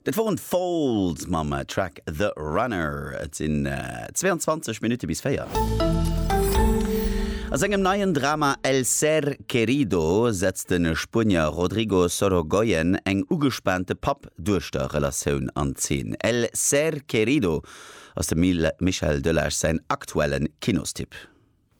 Dat woren d'Falls mam Track The Runner. Et sinn 22 Minutte bis 4. A sengem neien Drama El Ser Querido setzt de Spuenier Rodrigo Sorogoyen eng ugespaante Papp-Duechter-Relatioun an Zeen. El Ser Querido ass dem Michael Delage säin aktuellen Kinostipp.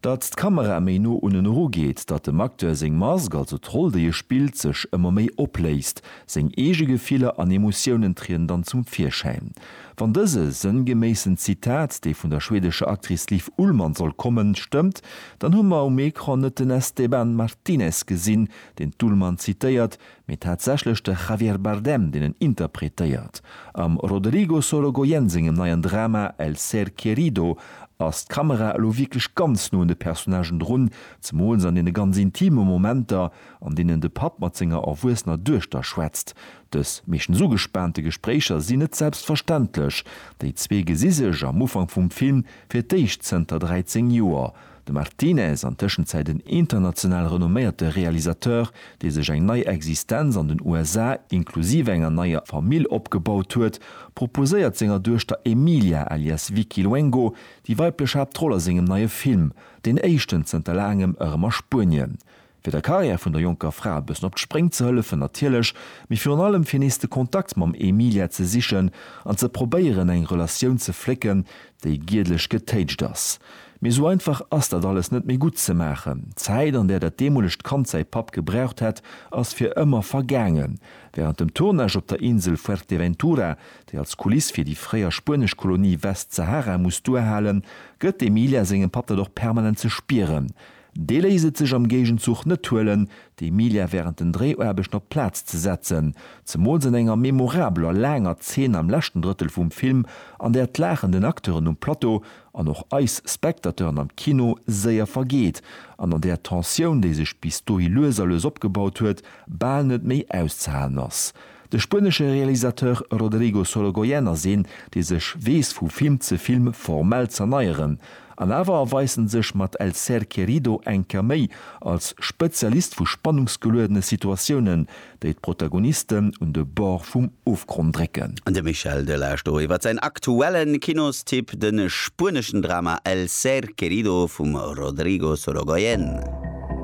Datt d'Kamera méi no un en erugeet, datt dem Acteur seng Mask, also d'Roll déi e spillt, sech ëmmer méi opléist. Seng eege Gefiller an Emotiounen trieden dann zum Virschäin. Wann dëse sënngeméissen Zitat, dee vun der schwedescher Actrice Liv Ullmann soll kommen, stëmmt, dann hu mer um Ecran net den Esteban Martinez gesinn, deen d'Ullmann zitéiert, mee tatsächlech de Javier Bardem, deen en interpretéiert. Am Roderigo Sorogoyen sengem neien Drama El ser querido ass d'Kamera elo wierklech ganz no un de Personnagen drun, zemools an deene ganz intime Momenter, an deenen de Papp mat senger erwuessener Duechter schwätzt. Dës meeschtens ugespaante Gespréicher sinn net selbstverständlech, déi zwee gesi sech am Ufank vum Film fir d'éischt zënter 13 Joer. De Martínez, an Tëschenzäit en international renomméierte Realisateur, dee sech eng nei Existenz an den USA, inklusiv enger neier Famill, opgebaut huet, proposéiert senger Duechter Emilia alias Vicky Luengo déi weiblech Haaptroll a sengem neie Film, deen éischten zënter laangem, erëm a Spuenien. fir der Karriär vun der jonker Fra e bëssen op d'Spréng ze hëllefen natierlech, mee virun allem fir nees de Kontakt mam Emilia ze sichen an ze probéieren eng Relatioun ze flécken, déi giedlech getéitscht ass. Mee esou einfach ass dat alles net méi gutt ze maachen. D'Zäit an där dat deemolegt Kand säi Papp gebraucht hätt, ass fir ëmmer vergaangen. Wärend dem Tournage op der Insel Fuerteventura, déi als Kuliss fir déi fréier spuenesch Kolonie Westsahara muss duerhalen, gëtt d'Emilia sengem Papp dat och permanent ze spieren, Dee léisst et sech am Géigenzuch net huelen, de Emilia wärend den Dréiaarbechten op d'Plaz ze setzen, zemools an enger memorabeler, laanger Zeen am leschten Drëttel vum Film, an där d'Laachen den Acteuren um Plateau an och eis Spectateuren am Kino séier vergeet an an där d'Tensioun, déi sech bis dohi lues a lues opgebaut huet, bal net méi auszehalen ass. De spuenesche Realisateur Rodrigo Sorogoyen ass een, dee sech weess vu Film ze Film formell z'erneieren. An awer erweist en sech mat El ser querido eng Kéier méi als Spezialist vu spannungsgeluedene Situatiounen, déi d'Protagonisten un de Bord vum Ofgronn drécken. De Michel Delage do iwwer säin aktuelle Kinostipp, de spueneschen Drama El ser querido vum Rodrigo Sorogoyen.